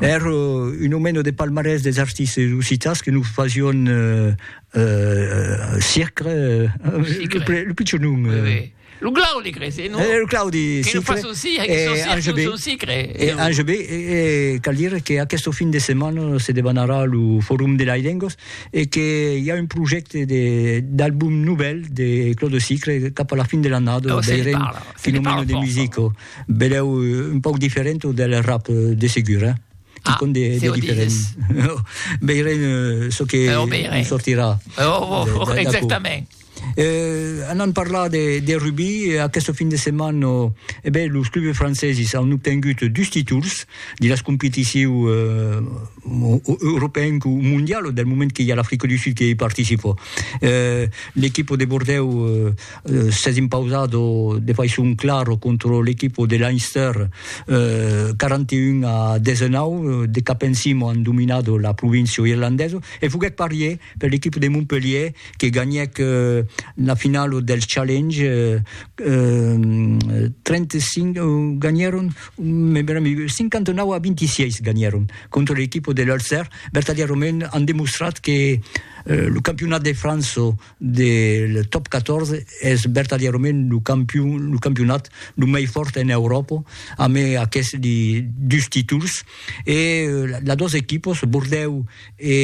Èr un omeno de palmarès des artistes occitans que nos fasión Sicre, lo pichon nom. Lo Claudi cre se non? Lo Claudi Sicre. Que nos fason Sicre, que son Sicre, que son Sicre. E Ange B, cal dire que aquesto fin de setmana se debanarà lo Forum de Lailengos e que i a un projècte d'album novèl de Claudi Sicre cap a la fin de l'annada, veirem quin omeno de musico. Belèu un pauc diferent del rap de segur, eh? Ah, con de, de diferent. Veirem uh, çò que oh, veirem. sortirà. Oh, oh, oh exactament. Eh, anant parlar de, de rugby, eh, aquest fin de setmana, eh ben, los clubs franceses han obtengut dus títols de les competicions eh, européennes ou mondiales, del moment que hi ha l'Afrique du Sud qui hi participa. Eh, L'equip de Bordeaux eh, s'es impausat de faiçon clara contra l'equipa de Leinster, 41 a 19, de cap en cima an dominat la província irlandesa, e foguèt parier per l'equipa de Montpellier que ganhèc la finala del Challenge, 35 ganhèron, 59 a 26 ganhèron contra l'equipa de l'Ulster, vertadièrament an demostrat que lo campionat de França de le top 14 es vertadièrament lo campion lo campionat lo mei fòrt en Euròpa amb aqueste li dus títols e las dos equipos Bordèu e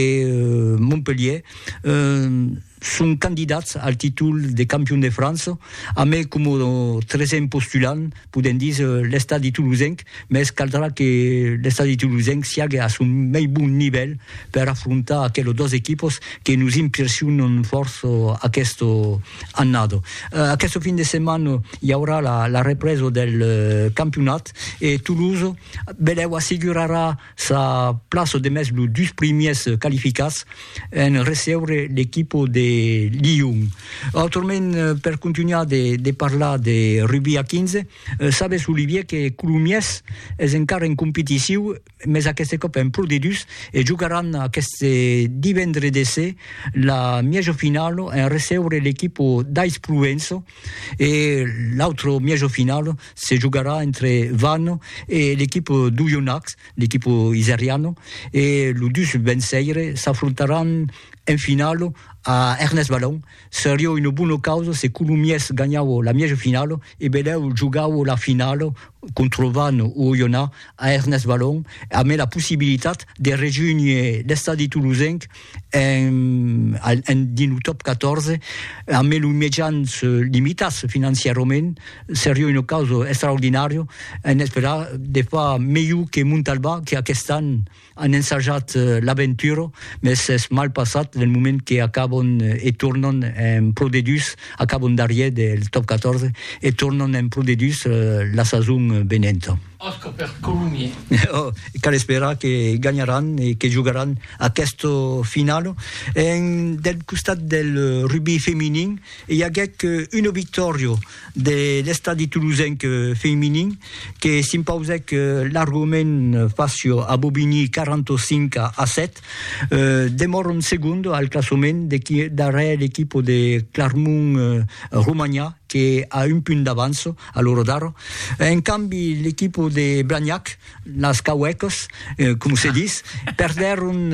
Montpelhier son candidats al títol de campion de França amb coma tresèm postulant podem dis, l'estadi tolosenc, mès caldrà que l'estadi tolosenc siague a son mei bon nivèl per afrontar aquelos dos equipos que nos impressionan fòrça aquesta annada. Aquesta fin de setmana i aurà la, la represa del campionat e Toulouse, belèu, assegurarà Sa plaça demest los dus primièrs qualificats en recebre l'equipa de Lyon. Autrament, per contunhar de parlar de rugbi a 15, sabes Olivier que Colomiers es encara en competiciu, mes aqueste còp en Pro D2 e jogaràn aqueste divendre de se la mièja finala en recebre l'equipa d'Aix-Provença E l'autre mièjo final se jogarà entre Vannes e l'equipa d'Oyonnax, l'equipa iseriana, e los dus venceires s'afrontaràn en final a Ernest Vallon. Seriá una bona causa se Colomiers ganhava la mièjo final e Belèu jogava la final contra Vannes o Oyonnax a Ernest Vallon, amé la possibilitat de rejónher l'estadi tolosenc en dins lo top 14 a me lo mejans limitas financiarament seria una causa extraordinària en esperar de fa melhor que Montalbà que aquest an an ensajat l'aventura mes es mal passat del moment que acabon e tornan en pro de dus acabon darrier del top 14 e tornan en pro de dus la sason venenta. Òsca per Colomier. Oh, cal esperar que ganharàn e que jogaràn aquesta finala. En, del costat del rugbi feminin, i aguèc una victòria de l'Estadi Tolosenc feminin que s'impausèc largament fàcia a Bobigny 45 a 7. Demòran segonda al classament darrèr l'equipa de Clarmont Romanha que a un punt d'avança a lo Rodaro. En cambi, l'equipo de Blagnac, las Cauècas, com se dis, perdèron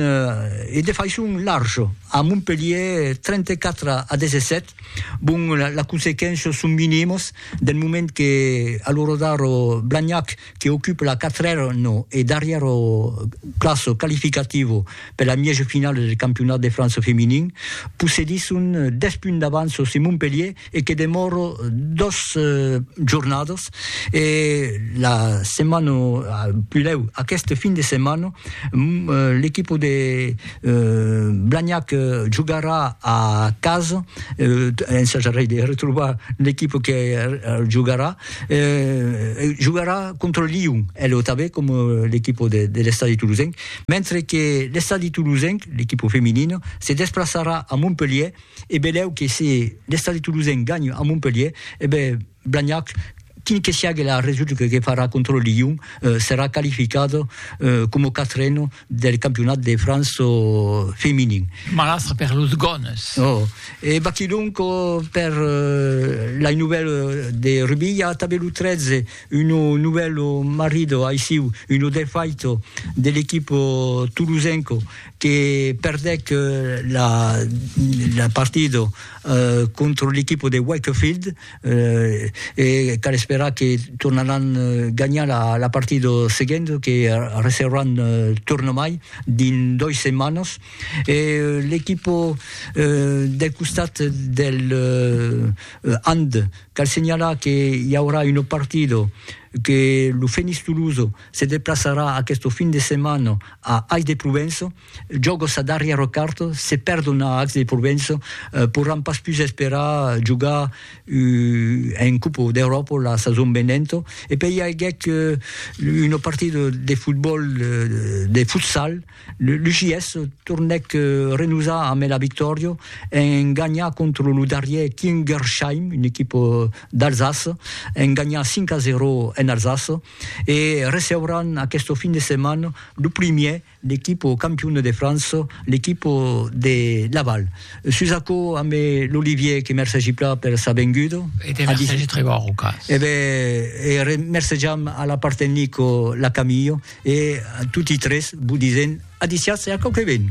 e de faiçon larja a Montpelhier 34 a 17. Bon, las consequéncias son minimas del moment que a lo Rodaro Blagnac que ocupa la quatrèra e darrièra plaça qualificativa per la mièja finala del campionat de França feminin, possedisson 10 punts d'avança sus Montpelhier e que demòro dos jornadas e la setmana pudèu aqueste fin de setmana l'equipa de Blagnac jogarà a casa ensajarei de retrobar l'equipa que jogarà jogarà contra Lyon e lo tanben coma l'equipa de l'estadi tolosenc mentre que l'estadi tolosenc l'equipa feminina se desplaçarà a Montpelhièr E belèu que se l'Estadi Toulousain ganhe a Montpelhier, e ben Blagnac, quin que siague la resulta que farà contra Lyon, serà qualificat coma quatren del campionat de França feminin. Malastre per los Gones! Oh! E baquilhonc per lai novèl de Rubi, i a tanben lo 13, un novèl marido aissiu, un defaito de l'equip toulousain. que perdèc la partida contra l'equipa de Wakefield e cal esperar que tornaràn ganhar la partida seguenta que recebràn tornamai dins dois setmanas e l'equipa del costat del hand cal senhalar que i aurà una partida que lo Fenix Tolosa Se deplaçarà aqueste fin de setmana a Ais de Provença, jòga sa darrièra carta, se perdon a Ais de Provença, porràn pas pus esperar jogar en Copa d'Euròpa la sason venenta, e pei i aguèt una partida de fotbòl, de futsal, Lo JS tornèc renosar amé la victòria en ganhar contra lo darrièr Kingersheim, una equipa d'Alsace, en ganhar 5 a 0 en Alsace e receuràn aquesta fin de setmana lo primièr l'equipa campiona de França, l'equipa de Laval. Sus aquò amé l'Olivier que mercegi plan per sa venguda. E te mercegi Trevor Rocas. E ben, e mercejam a la part tecnica la Camille. E a toti tres vos disèm adiciatz e a quauque ben!